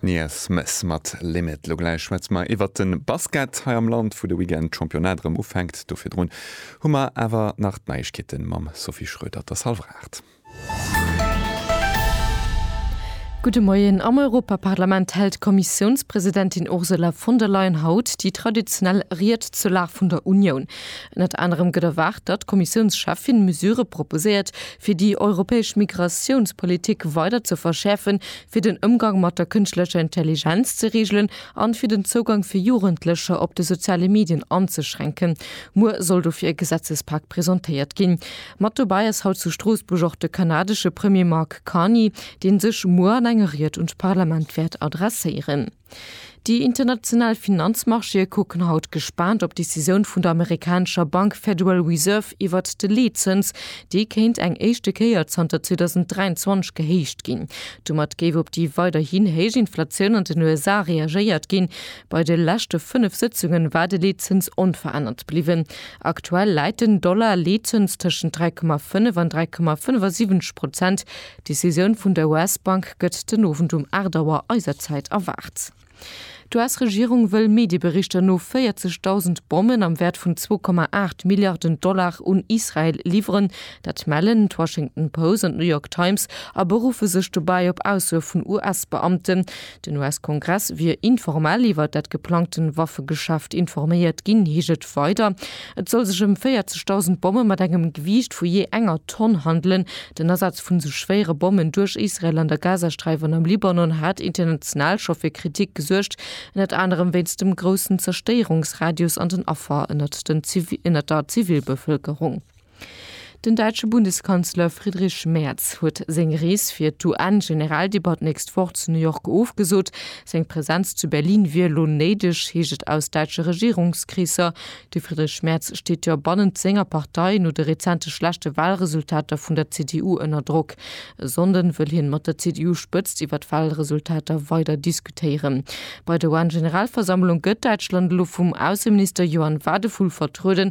Nia Smith mat Limit. Lo gläich schwätze mer iwwert de Basket hei am Land, wou de Weekend d'Championnat erëm ufänkt. Do virdrun hu mer awer nach d'Neiegkeete mam Sophie Schroeder, der Salvraart. Gudde Moien. Am Europaparlament hält d'Kommissiounspresidentin Ursula von der Leyen haut déi traditionell Ried zur Lag vun der Unioun. Ënnert anerem gëtt erwaart, datt d'Kommissiounscheffin Mesurë proposéiert, fir déi europäesch Migratiounspolitik weider ze verschäerfen, fir den Ëmgang mat der kënschtlecher Intelligenz ze reegelen an fir den Zougang fir Jugendlecher op de soziale Medien anzeschränken. Muer soll dofir e Gesetzespak presentéiert ginn. Mat dobäi ass haut zu Stroossbuerg och de kanadesche Premier Mark Carney, dee sech muer an enger Ried un d'Parlament wäert adresséieren. Déi international Finanzmarchéë kucken haut gespaant op d'Decisioun vun der amerikanescher Bank Federal Reserve iwwert de Leetzëns, dee kéint eng éischte Kéier zanter 2023 gehéicht ginn. Domat géif op déi weiderhin héich Inflatioun an den USA reagéiert ginn. Bei de leschte fënnef Sëtzunge war de Leetzëns onverännert bliwwen. Aktuell läit den Dollar-Leetzëns tëschent 3,5 an 3,75 Prozent, D'Decisioun vun der US-Bank gëtt den Owend um 8 Auer eiser Zäit erwaart. D'US-Regierung wëll Medieberichter no 40.000 Bommen am Wäert vun 2,8 Milliarden Dollar un Israel liwweren. Dat mellen d'Washington Post an d'New York Times a beruffe sech dobäi op Aussoe vun US-Beamten. Den US-Kongress wier informell iwwer dat geplangten Waffegeschäft informéiert ginn, heescht et weider. Et soll sech ëm 40.000 Bomme mat engem Gewiicht vu jee enger Tonn handelen. Den Asaz vun esou schwéiere Bommen duerch Israel an der Gazasträif an am Libanon hat international scho fir Kritik gesuergt, ënnert anerem wéinst dem groussen Zerstéierungsradius an den Affer ënnert der Zivilbevëlkerung. Den däitsche Bundeskanzler Friedrich Merz huet seng Rees fir d'UN-Generaldebatt d'nächst Woch zu New York ofgesot. Seng Presenz zu Berlin wier elo néideg, heescht et aus däitsche Regierungskreesser. De Friedrich Merz steet jo bannent senger Partei no de rezente schlechte Walresultater vun der CDU ënner Drock. E Sonnden wëll hien mat der CDU-Spëtzt iwwer d'Walresultater weider diskutéieren. Bei der UN-Generalversammlung gëtt Däitschland elo vum Ausseminister Johann Wadephul vertrueden.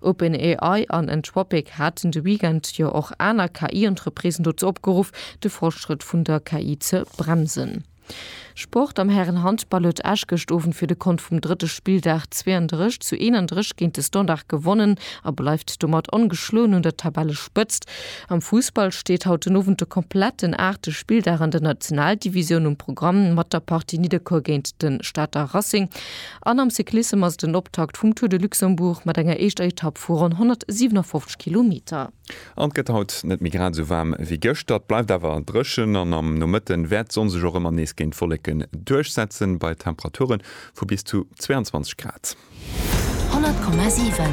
OpenAI an Anthropic haten de Weekend jo och aner KI-Entreprisen dozou opgeruff, de Fortschrëtt vun der KI ze bremsen. Sport, Am Hären-Handball huet Esch gëscht Owend fir de Kont vum drëtte Spilldag 32 zu 31 géint de Standard gewonnen a bleift domat ongeschloen un der Tabellespëtzt. Am Fussball steet haut den Owend de kompletten aachte Spilldag an der Nationaldivisioun um Programm mat der Partie Nidderkuer géint de Stater Racing. An am Cyclissem ass et den Optakt vum Tour de Luxembourg mat enger éischter Etapp vu ronn 157 Kilometer. An et gëtt haut net méi grad esou waarm wéi gëschter. Et bleift awer dréchen an am Nomëtte wäert d'Sonn sech och ëmmer nees géint d'Wolleken duerchsetzen, bei Temperature vu bis zu 22 Grad. 100,7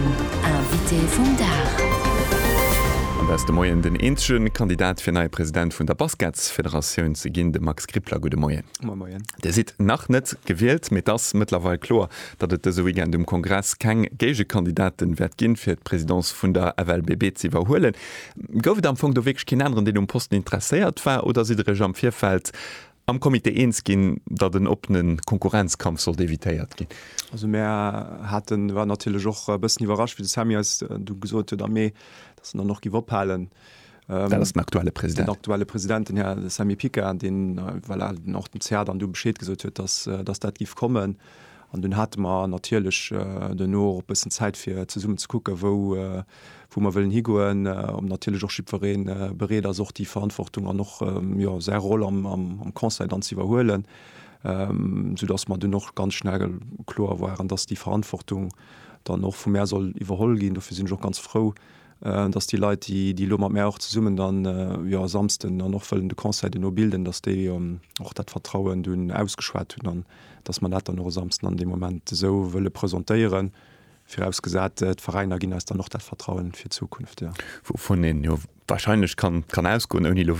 Invité vum Dag. An dat ass de Moien den eenzege Kandidat fir neie President vun der Basketsfederatioun ze ginn, de Max Gribler. Gudde Moien. Moie Moien. Dir sidd nach net gewielt, mee et ass mëttlerweil kloer, datt et dëse Weekend um Kongress keng Géigekandidaten wäert ginn, fir d'Présidence vun der FLBB z'iwwerhuelen. Gouf et am Fong do wierklech keen aneren, deen um Posten interesséiert war, oder sidd der iech am Virfeld am Comité eens ginn, datt en oppene Konkurrenzkampf sollt evitéiert ginn? Also mär haten, waren natierlech och e bëssen iwwerrascht, wéi de Samy eis du gesot huet am Mee, datt en dann och giff ophalen. Dat ass den aktuelle President. Den aktuelle President, den Här Samy Picard, deen voilà, och dem CA dann du Bescheed gesot huet, dass, äh, dass dat giff kommen. An dun hate mer natierlech äh, duerno och bëssen Zäit fir zesummen ze kucke wou, äh, wou mer wëllen higoen, äh, ob natierlech och jiddwereen äh, bereet ass och déi Verantwortung an och ähm, jo, säi Roll am, am, am Conseil dann ze iwwerhuelen, ähm, soudass mer dunn och ganz schnell kloer waren, dass déi Verantwortung dann och vu mär soll iwwerholl ginn. Dofir sinn ech och ganz frou, äh, dass déi Leit, déi, déi elo mat mär och zesummen dann äh, jo, e Samsten dann och wëllen de Conseil duerno bilden, dass déi ähm, och dat Vertrauen dunn ausgeschwat hunn an dass mer dat dann och e Samsten an deem Moment esou wëlle presentéieren, virausgesat, äh, d'Veräiner ginn eis dann och dat Vertrauen fir d'Zukunft, jo. Wouvun een jo wahrscheinlech kann, kann ausgoen, ouni elo